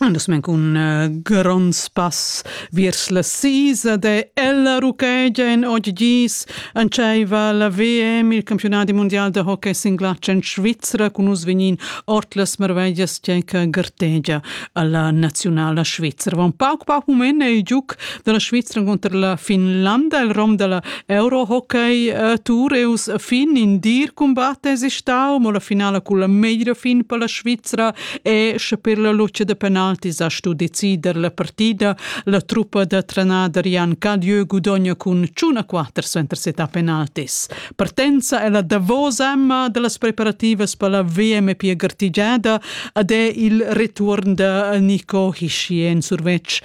Andas men cun uh, gronds pass viers la sisa de ella ruchegia en oggi antscheiva la VM, il campionat mondial de hockey singlatsch en Svizzera cun us vegnin ort las marveglias tgeca gartegia alla nazionala Svizzera. Va un pauc pauc mument ei giuc della Svizzera contra la Finlanda, il rom della Eurohockey uh, Tour eus fin in dir combat es stau, mo la finala con la meglio fin per la Svizzera e sche per la luce de penaltis ha stu decider la partida, la truppa de trenader Jan Cadieu gudogna con ciuna 4 suentersetà penaltis. Partenza è la davosa emma delle preparative per la VMP Gartigiada ed è il return de Nico Hischi en survetsch.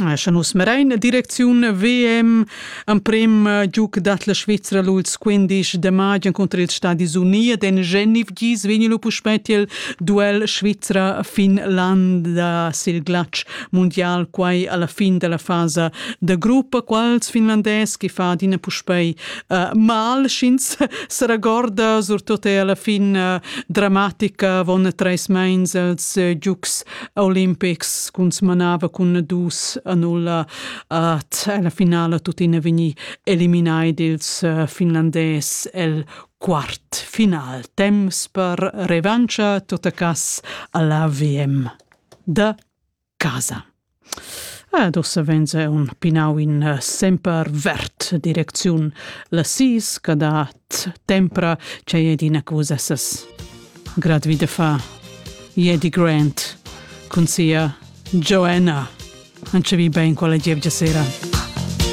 Sche nus mirain direcziun VM, emprem giug dat la Svizra l'ultims 15 de maig encunter ils Stadis Uni ed en Genf gis vegn lu puspei tiel duell Svizra-Finlanda sil glatsch mundial, quai alla fin della fasa da gruppa, quals finlandès che fa adina puspei uh, mal, sch'ins seragorda, surtut è alla fin uh, dramatica, von treis meins els uh, giugs Olimpics cuntsmanava cun dus a nulla at alla finala tuttina vegnì eliminai dils eh, finlandés el quart final. Temps per revancha, tot a cas alla VM da casa. Ed ussa venza un pinau in eh, semper vert direcziun la sis che dat tempra che è d'ina cosa essas grad vide fa Jedi Grant con sia Joanna. Ancevi ben con la gievgia sera.